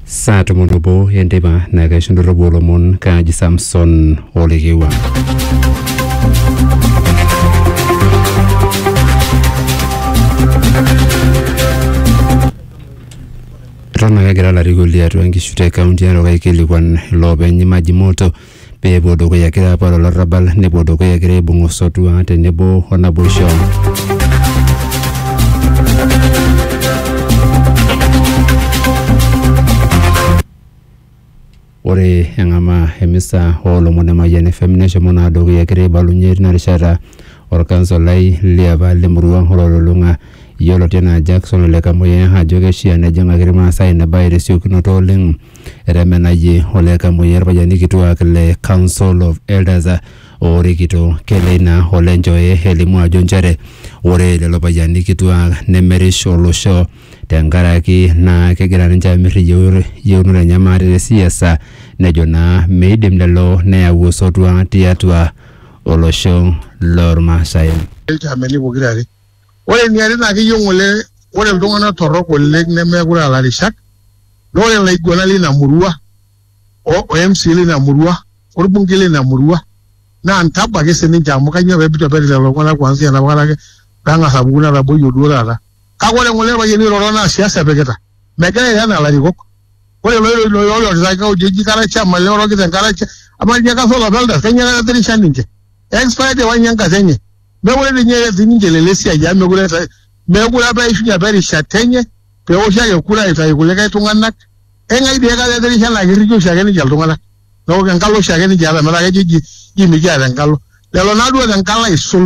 saa tomon obo enteipa naa kaisho ndorropu olomon kaaji samson olekewa eton ake egira ilarikok liatua nkishu te kaunti e narok aikilikuan iloopeny maji moto pee epuo dukuya egira apuo aata olarrabal nepuo dukuya egira aibung osotua tenebo o naboisho. Ore eng'amaa emisa oolomon e Mayian FM neshomo naa dukuya egira aibalunye tina rishata orkansolai liapa le murua o Lolulung'a yioloti enaa Jackson Ole Kamuyiaa ajo keishia nejing'aki Irmaasai ina bae tesiokinoto oleng etemenayie ole Kamuoyia irpayiani kituaak le Council of Elders oorikito Keleina ole Njoe elimu ajo nchere ore lelo payiani kituaak nemerish olosho tenkaraki naa kegira ninche aamirr iyieuonot enye maate te siasa nejo naa meidim lelo neyau osotua tiatua olosho lormaasai. Ilchaameni pokira are Ore eniare naa keyieu ng'ole ore iltung'ana torrok oleng nemeekure aa larishak naa ore laiguanak leina murua o mca leina murua o lbungei leina murua naa ntabo ake sii ninche amu kainyoo pee eitu eperi lelo tung'ana kuansia enapa kata ake pee eng'as apuku netaboyie duo taata. Kake ore ng'ole ilpayiani oiroro naa siasa epikita. Megira airo enaa larikok. Ore looirorita ake ojo eji kara chama ele orokita enkare amaa ninye kasa olapa eldas? Kainyoo etaretisha ninche? Expired apa ninye enkata enye. mekure ninye ees ninche lelo esiai amu mekure ees- mekure apa eishunye apa erishata enye peoshi ake kura aitayu kulikae tung'anak eng'ae dii aikata etirisha naa kirrikie oshi ake ninche iltung'anak neeku enkalo oshi ake ninche eeta metaa kejo ji ji mikiata enkalo lelo naa duo tenkalo aisul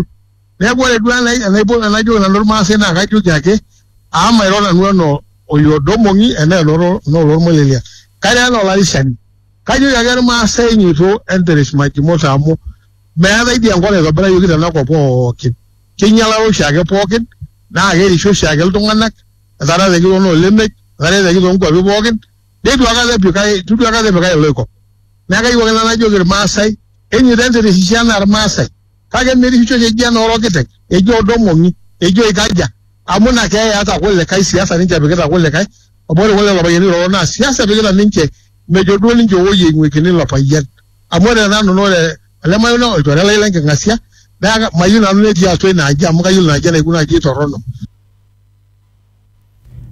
neeku ore duo enai- enaipo- enajoki nanu irmaasai naa kajoki ake amu mairo nanu enaa oliodong'ong'i enaa enoro- enaa olormolelia kairo enaa olarishani kajoki ake irmaasai nyoito enteresh majimota amu Meetae dii enkop naitobirayioki tena kop pooki. Keinyialaro oshiake pooki naa kerisio oshiake iltung'ana etaata etii too noo lemek etaata etii too nkuapi pooki neitu aikata epikai eitu duo aikata epikai iloikop. Niaku kayieu ake nanu najoki ilmaasai enyoito entirisisho anaa ilmaasai kake merisisho oshi eji enoo orokiteng eji oodo omong'i eji oikaja amu ina keeya eeta kulikae siasa ninche epikita kulikae amu ore kulo lelo payiani oiroro naa siasa epikita ninche mejo duo ninche owoi eing'uikini ilo payian. Amu ore tenanu naa ore ele mayioni naa olchore lai le nking'asia naa mayieu nanu netii atua ina aji amu kayiolo ina aji enaikununo ajo eitorrono.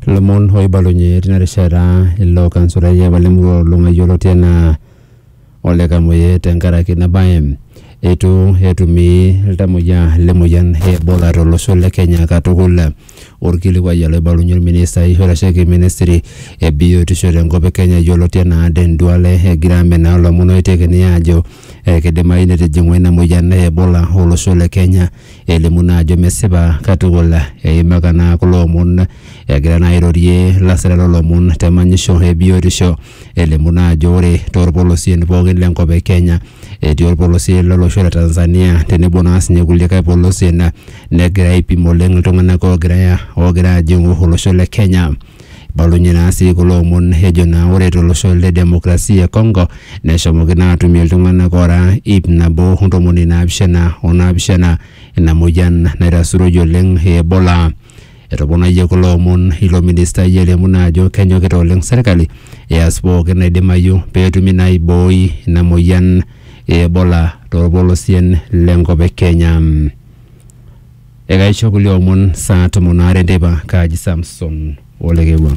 Ilomon oibalunye tina rishata ilo kansulai apa le murua o Lung'a yioloti enaa Ole Kamuoyia tenkaraki ina bae. Eitu etumi iltamuoyia le moyian e Ebola to losho le Kenya katukul. Olkilikuai ele oibalunye olministai oitasheki ministry e biotisho tenkop e Kenya yioloti enaa Aden Duale egira amenaa ilomon oitekini aajo keidimayu netijing'ua ina moyian e Ebola olosho le Kenya. Elimu naa ajo mesipa katukul. Eimaka naa kulo omon egira naa airorie lasirak loo lomon te manyisho e biotisho. elimu naa ajo ore toorpolosien pookin le nkop e Kenya etii orpolosie lolosho le Tanzania tenebo naa sinye kulikae polosien naa negira aipim oleng iltung'anak oogira oogira aajing'u olosho le Kenya. Ibalunye naa sii kulo omon ejo naa ore to losho le demokrasia e Congo neshomoki naa aatumie iltung'anak oora iip nabo o ntomoni naapishana o naapishana ina mueyian naitasuroyie oleng e Ebola. Etoponayie kulo omon ilo ministai eliamuna ajo kenyokita oleng serkali eas pooki naidimayu peetumi naa aibooi ina moyian e Ebola torpolosien lenkop e Kenya. Ekaisho kulie omon saa tomon aare enteipa, kaaji Samson Olekewua.